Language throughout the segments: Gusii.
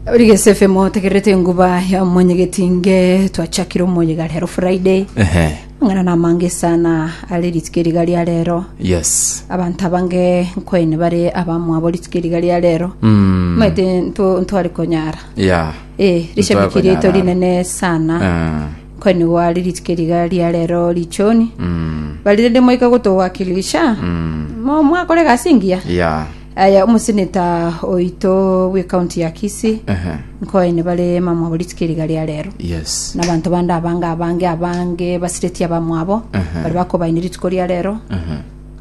Origese FM otegererete enguba ya omonyegetinge twachakire omoyiga rero Friday Ehe. ng'ana na amange sana are rituko eriga ria rero Yes. abanto abange nkoine bare abamwabo rituko eriga ria rero Mm. maete nto- ntware konyara Yeah. eh rishabiki rieto konyara. rinene sana Ah. nkoine gware rituko eriga ria rero richoni Mm. bari rende moika gotowakilisha Mm. mo mwakore gasi ngiya Yeah. Aye omoseneta oito bw'ekaunti ya Kisii Ehe. nkoene bare mamwabo rituko eri iga ria rero Yes. na abanto bande abange abange abange basireti abamwabo Aha. bari bakobaini rituko ria rero Ehe.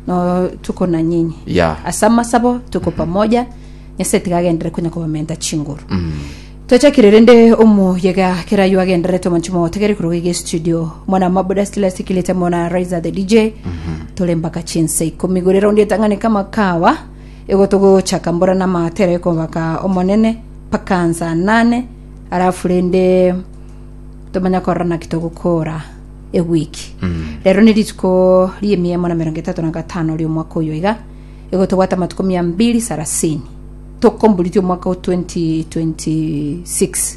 no tuko na nyinyi Yeah. ase amasabo tuko pamoja nyase tiga agendere konya kobamenta chinguru Mm. Twachakire rende omoyega keraywo agendererete omonche mogotegere korwa iga estudio mona mabuda stila sikilete mona riser the dj tore mpaka chinsa ikomi gore raundi etang'ane kama kawa ego togochaka mbora na matera ekobaka omonene mpaka nsa nane arafu rende tomanya korora naki togokora ewiki rero ne rituko riemia emo na merongo etato na gatano riomwaka oyo iga ego tobwate amatuko mia mbiri sarasini tokomboritia omwaka o 2026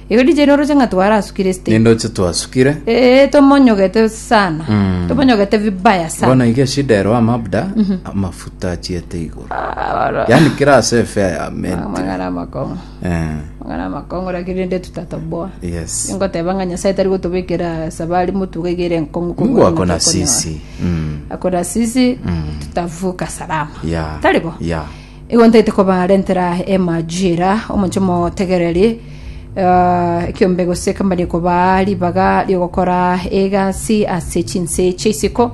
igo DJ noro oche ng'a twarasukire stage ninde oche twasukire ee tomonyogete sana Mm. tomonyogete vibaya sana bono iga eshida ero amabda amafuta achiete igoro Abaro- yani kera ase efe ya menti amang'ana amakong'u Eh, amang'ana amakong'u lakini rende tutatoboa yes ngoteba ng'a nyasaye tari gotobekera sabari motuga iga ere enkong'u kobua mungu ng'a ako na tokonyoa. sisi Mm, akona sisi tutavuka salama ya taribo ya Igo ntaete kobarentera emajira, omonche motegereri, eh, ekiombe gose kambani kobaa ribaga riogokora egasi ase chinse chia isiko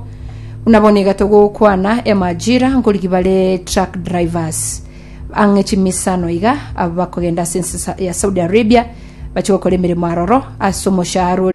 buna bono iga togokwana emajira nkoriki bare truck drivers ang'e chimisano iga aba bakogenda ase ense sa- ya saudi arabia bache gokora emeremo aroro ase omoshahara ore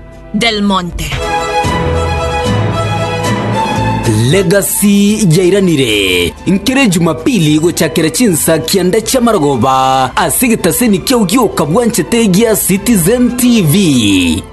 Del Monte. Legacy yairanire nkere Jumapili gochakera chinsa kianda chia marogoba ase getaseni kiao gioka bwanchete gia Citizen TV.